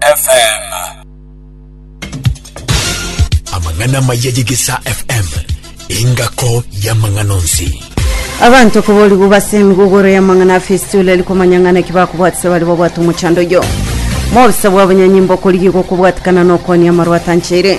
FM. Amang'ana amaya y'Egesaa FM, engako y'amang'ana onsi. abanto koborigwa base emigogoro y'amang'ana afesitula eri komanya ng'ana ki bakobwatisa bari babwate omochando oyo mobisa bwa bonyanyimba okorigigwa kobwatikana na okonia amarwatancheire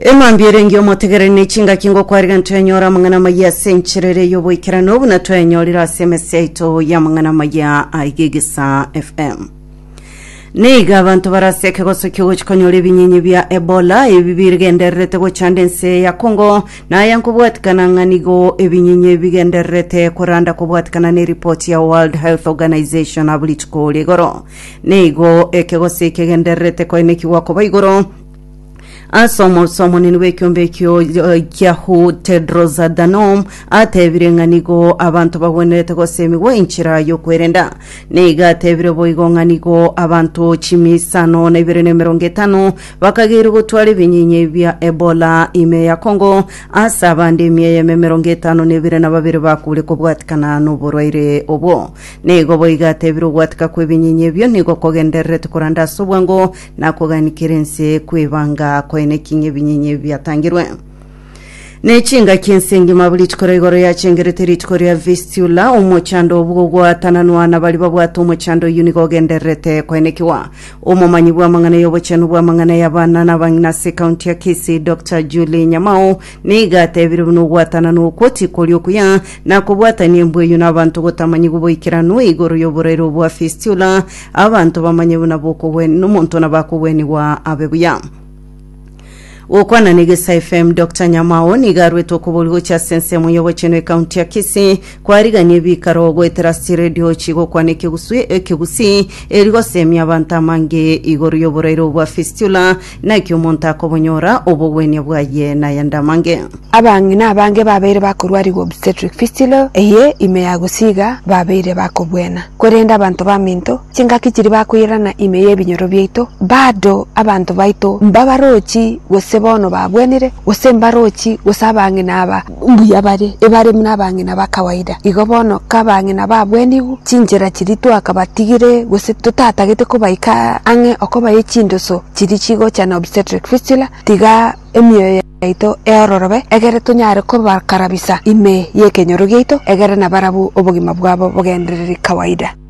emambia erenge omotegereri ne chingaki ngokwariga ntwenyora amang'ana amaya ase enchera ere y'oboikeranu buna twenyorire ase emesi yaito y'amang'ana amaya aiga egesa fm neiga abanto bare ase ekegoso kiogochi konyora ebinyenye bia ebola ebi bigendererete gochanda ense ya kongo naya nkobwatikana ng'a nigo ebinyenye bigendererete koranda kobwatikana na eripoti ya world health organization abo rituko rigoro Nigo ekegosii kegendererete koinekigwa koba igoro ase omorusi omonene bw'ekiombe ekio kiahu Tedros Adhanom atebire ng'a nigo abanto bagwenerete goseemiwa enchera y'okwerenda. Nigo atebire boigo ng'a nigo abanto chimiisano na ibere na emerongo etano bakageirwe gotwara ebinyinya bia Ebola ime ya Congo ase abande emia eyemo emerongo etano na ebere na babere bakure kobwatikana noborwaire obwo. Nigo boigo atebire ogwatika kw'ebinyinyi ebio nigo kogendererete korande ase obwango na koganikera ense kw'eibanga koene ki ng'ebinyinyi ebi biatangirwe. Ne chingaki ense engima buli chikora igoro yachengerete rituko ria Vistula, omochando obwo ogwatananwa na baria babwate omochando oyio nigo ogendererete koenekiwa. Omomanyi bw'amang'ana y'obochenu bw'amang'ana y'abana na abang'ina ase ekaunti ya Kisii, Doctor Julie Nyamao, Nigo atebirie buna ogwatanana okwo tikori okuya, na kobwatania embueyio na abanto gotamanyigwe boikeranu igoro y'oborairo bwa fistula, abanto bamanye buna bokogwen nomonto nabakogwenigwa abe buya. Gokwana na Egesa FM, Doctor Nyamao nigo arwete okoboria gochia ase ensemo y'ogochenu ekaunti ya Kisii, kwarigania ebikaro goetera ase chiredio chigokwana ekeguswi ekegusii, eri gosemia abanto amange igoro y'oborairo bwa fistula, Naki omonto akobonyora obogwenia bwaye nayende amange. Abang'ina abange babeire bakorwarigwa obstetric fistulae eye ime ya gosiiga babeire bakobuena, korende abanto baminto chingaki chiria bakoirana ime y'ebinyoro biaito, bado abanto baito mbabarochi gose bono babuenire, gose mbarochi gose abang'ina aba mbuya bare ebare buna abang'ina ba kawaida. Igo bono kabang'ina babwenigwe chinchera chiria twakabatigire gose totatagete kobaika ang'e okobaye chindoso chiria chigocha na obstetric fistula, tiga emioyo yaito eororobe egere tonyare kobakarabisa ime y'ekenyoro giaito egere nabarabwo obogima bwabo bogendereri kawaida.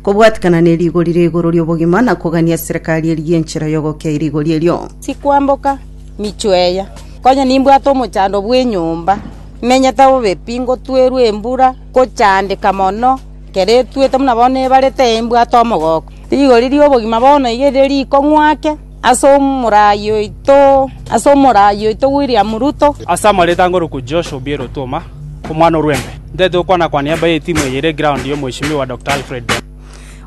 Kobwatikana ne rigori ria igoro ri'obogima, na kogania eserekari eria y'enchera y'ogokea e rigori erio. Tikwamboka michwo eya, konya nimbwate omochando bw'enyomba, menyete bobe pi, ngotwerwe embura, ngochandeka mono, ekero etwete buna bono ebarete, imbwate omogoko. Rigori ri'obogima bono iga erire rikong'wake. Ase omoraai oito, ase omoraai oito William Ruto. Ase amareeta angorokwu Josh Obiero Otuoma, omwana o Rwembe, ntaete gokwana-kwania baye etimu eye ere eground ya Omweshimiwa Doctor Alfred Beno.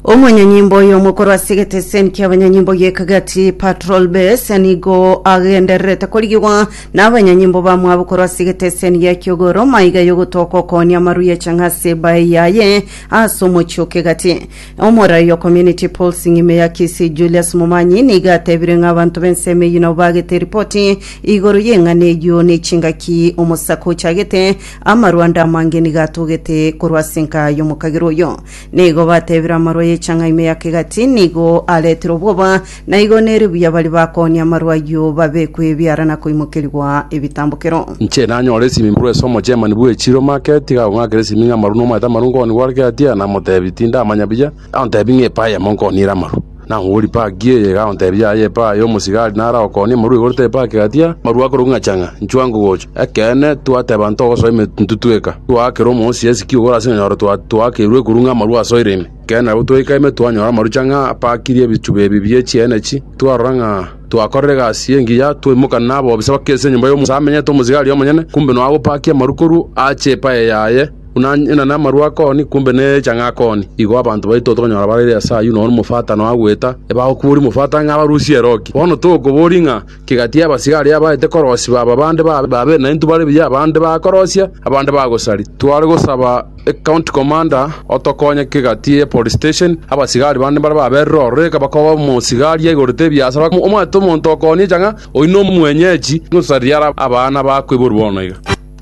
Omonyanyimbo oyo omokorwa ase egeteseni kiabanyanyimbo gie Kagati Patrol Base nigo agendererete korigigwa nabanyanyimbo bamwabo korwa ase egeteseni gia Kiogoro maiga yogotoka okoonia amarwa ya chang'ase bae yaye ase omochie o Kegati. Omorai o Community Pulsing ime ya Kisii Julius Momanyi nigo atebire ng'a abanto b'ensemo eyio nabo bagete eripoti igoro y'eng'ana eyio ne chingaki omosako ochagete, amarwa ande amange nigo atogete korwa ase enka y'omokagerwa oyo. Nigo batebire amarwa ye Chang'a ime ya Kegati nigo aretire obwoba Na igo nere buya baria bakoonia amarwa ayio babekwe ebiara na koimokerigwa ebitambokero. Inche nanyore esimimurwa ase omochemani bwe chiroma ake, tiga agong'akere esimi ng'a amaru nomaete amaru nkoonia gware ki atia? Namoteebia, Tindamanya buya. Agontebia ng'a epa eyemo nkoniire amaru. Nang'uborie, Paki eye? Iga agontebia, Aye epa aya omosigari naro agokoonie amaru igoro tebe paki gatia? Amaru akorokwa ng'a chang'a, inchwa ngogocha. Ekeene, twateeba ntogosoa emetuntu tweka. Twaakera omoosia esiki ogoro ase ng'a nyoro twakeirwe ekurung'a amaru asoire ime. Ekero nabwo twaika ime twanyora amarucha ng'a apaakirie ebichuba ebi bie chienenchi. Twarora ng'a twakorire egasi y'engiya, twaimoka nabobisa bakerisia enyomba y'omonto amenyete omosigari omonyene, kumbe nonya agopaakia amaru korwa aache epaye yaye, buna ng'ina namaru akoni, kumbe necha ng'a akoni. Igo abanto baito tokonyora bareire ase ayio nonya omofatano agoeta, ebagokoboria omofatano ng'a abarusie eroki. Bono togokoboria ng'a Kigatia abasigari abaete korosiba aba bande babe naintwe bare buya abande bakorosia, abande bagosaria. Tware gosaba ecounty commander otokonye kigatia ye police station, abasigari bande mbare baberire ororo eka bakoba omosigari aigorete ebiasara omanyete omonto okonia echa ng'a oyio nomwenyechi, nosaria are abana bakoiborwa bono iga.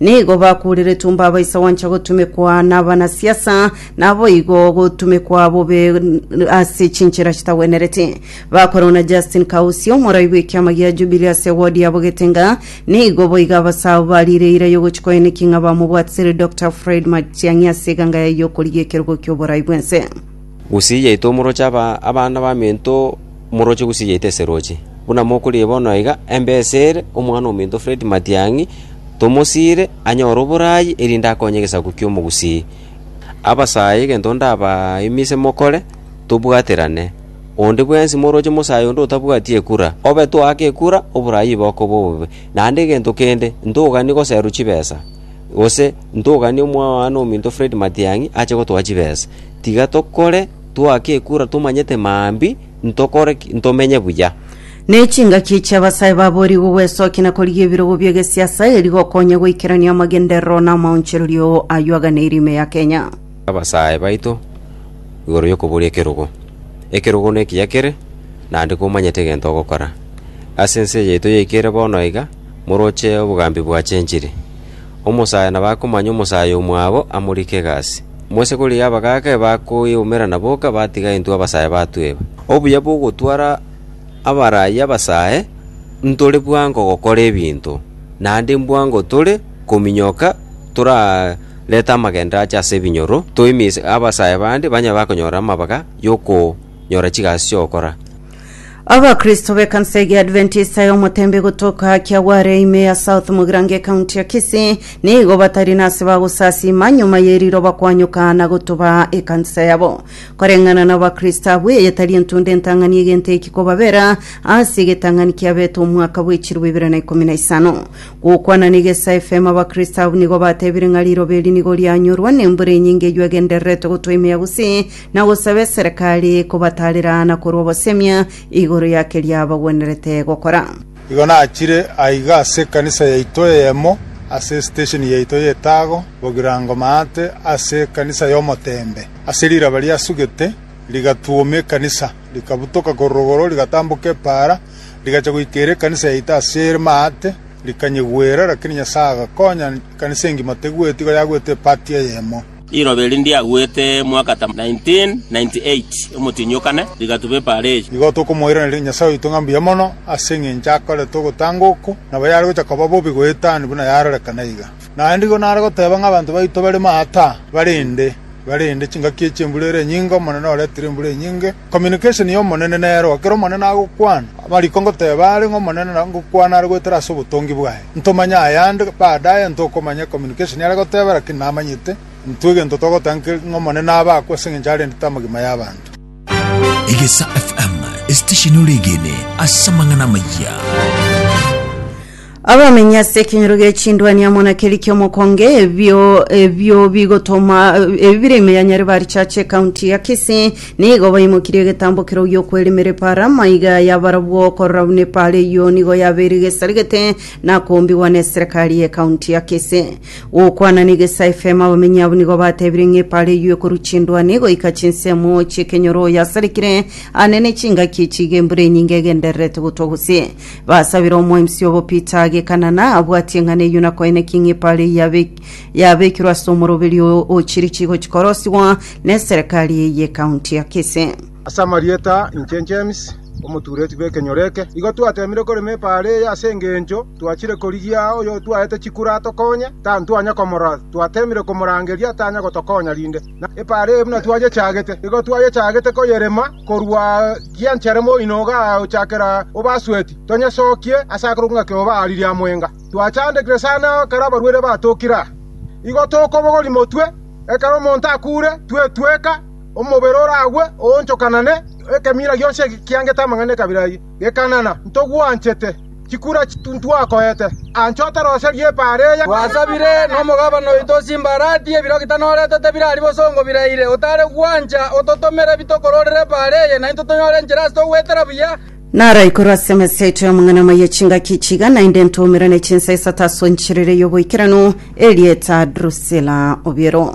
Nigo bakuureretwe mbabaisa gwancha gotumekwa nabanasiasa, naboigo gotumekwa bobe ase chinchera chitagwenereti. Bakorwa na Justin Kausi, omorai bw'ekiama gia Jubilee ase ewodi yabo Getenga, nigo boigo abasaao bariire eira yogochia koeneki ng'a bamobwatisire Dokta Fred Matiang'i ase eganga yaye y'okorigia ekerogo ki'oborai bw'ense. Gose yaito omoroche abana b'aminto omoroche gose yaito eseroche. Buna mokorigia bono aiga, embe esere, omwana ominto Fred Matiang'i tomosiire anyore oboraai erinde akonye egesaku ki'omogusii. Abasae egento ndabaimise mokore, tobwaterane. Onde bwensi moroche mosae onde otabwati ekura, obe toake ekura, oboraai bokoba obobe. Naende egento kende, ntogani goserwa chibesa, gose ntogani omwana ominto Fred Matiang'i ache gotoa chibesa. Tiga tokore, twake ekura tomanyete maambia, ntokore ki? Ntomenye buya. Ne chingaki chi'abasae babo erigo gwesokia na korigia ebirogo bi'egesiasa eri gokonya goikerania amagenderero na amaonchorerio ayio aganeire ime ya Kenya. Abasae baito igoro y'okoboria ekerogo. Ekerogo nekiya kere, naende komanyete egento ogokora. Ase ense yaito yaikere bono iga, moroche obogambi bwa chenchiri. Omosae nabakomanya omosae omwabo amorike egasi. Mwese korigia abagaaka ebakoyeumera na boka batiga intwe abasae batweba. Obuya bw'ogotwara abarai abasae ntore bwango gokora ebinto, naende mbwango tore kominyoka torarete amagenderero ache ase ebinyoro, toimise abasae bande banyare bakonyora amabaga y'oko. nyora chigasi chi'ogokora. Abakristo b'ekanisa eria Adventista y'omoteembe gotoka Kiagware ime ya South Mugirango ekaunti ya Kisii nigo batari nase bagosasiima nyuma ye riroba kwanyoka na gotuba ekanisa yabo. Koreng'ana na abakristo abwo eye tari entunda entang'ani egento eki kobabera ase egetang'ani kiabete omwaka bwechirwe ibere na ikomi na isano. Gokwana ne Gesa FM abakristo abwo nigo batebire ng'a riroba eri nigo rianyorwa nembura enyinge eywo egendererete gotwa ime ya Gusii na gosaba eserekari kobataarera na korwa obosemia igoro ya keria bagwenerete gokora. Igo nachire aiga ase ekanisa yaito eyemo ase esitesheni yaito y'etago bogirango maate ase ekanisa y'omoteembe. Ase riraba riasugete rigatuoma ekanisa, rikabutoka korwa igoro rigatamboka epaara, rigacha goika ere ekanisa yaito ase ere maate, rikanyegwera, rakini Nyasae agakonya ekanisa engima tegweti igo yagwete epati eyemo. Riroba eri ndiagwete mwakata 1998 omotienyi o kane rigatuba epaara eye. Nigo tokomoiraneria Nyasae oito ng'a mbuya mono ase engencho akorete ogotanga oko, nabo yare gocha koba bobe goetani buna yarorekana iga. Naende igo nare goteba ng'a abanto baito bare maata, barende, barende, chingaki echie embura ere enyinge, Omonene oretire embura enyinge, Communication y'Omonene nero. Ekero Omonene agokwana, amariko ngoteba are ng'a Omonene na ngokwana are goetera ase obotongi bwaye. Ntomanye ayande baadaye, ntokomanya communication yare goteba, lakini namanyete intwe egento togoteba nki ng'a Omonene abe akwo ase engencho arendete amagima y'abanto. Egesa FM, esitesheni ore egeene ase amang'ana amayia. Abamenyi ase ekenyoro gie chindwani amo na keria ki'omokonge, ebio ebio bigotoma ebi bire ime ya Nyareba Richache, County ya Kisii, nigo baimokirie egetambo keroo gi'okweremera epaara, maiga y'abarabwo okorora buna epaara eyio nigo yabeire egesarigete na koombigwa n'eserekari ye County ya Kisii. Gokwana ne Gesa FM, abamenyi abwo nigo batebire ng'a epaara eyio ekorwa chindwani goika chinsemo chi'ekenyoro yasarekire, aa nene chingaki echi iga embura enyinge egendererete gotwa gose. Basabire omoemsi obo Peter agekanana abwatie ng'a neyio nakoene king'ipa are yabe- yabekirwe ase omoroberi o- o chirichi gochikorosiwa neserekari eye y'ekaunti ya Kisii. Ase amarieta inche James, omotuureti bw'ekenyoro eke, igo twateemire korema epa are eye ase engencho twachire korigia oyotwaete chikura atokonye, tantwanya komorora, twateemire komorangeria tanya gotokonya rinde. na epaara eye buna twayechagete, nigo twayechagete koyerema korwa gianchere moino ogaochakera o Basweti, tonyesokie ase akoro ng'a keoba aria ria mwenga. Twachandekire sana ekero abarwere batokire aa. Igo tokobogoria motwe, ekero omonto akure, twetweka, omobere oragwe, oonchokanane, ekemira gionsi ekiangete amang'ana ekabira eye. Gekanana, ntogwanchete. Chikura ntwakoete. Ancha otaroserie epaara eya. Twasabire nomogabana oito chimbarati ebirogi tanorete tebirari bosongo biraire. Otare gwancha, ototomere bitokororere epaara eye, naintwe tonyore enchera ase togwetera buya. Naraikorwe ase emesa yaito y'amang'ana amaya chingaki ichi iga, naende ntoumerane chinsa isato ase enchiriri y'oboikeranu, erieta Drusila Obiero.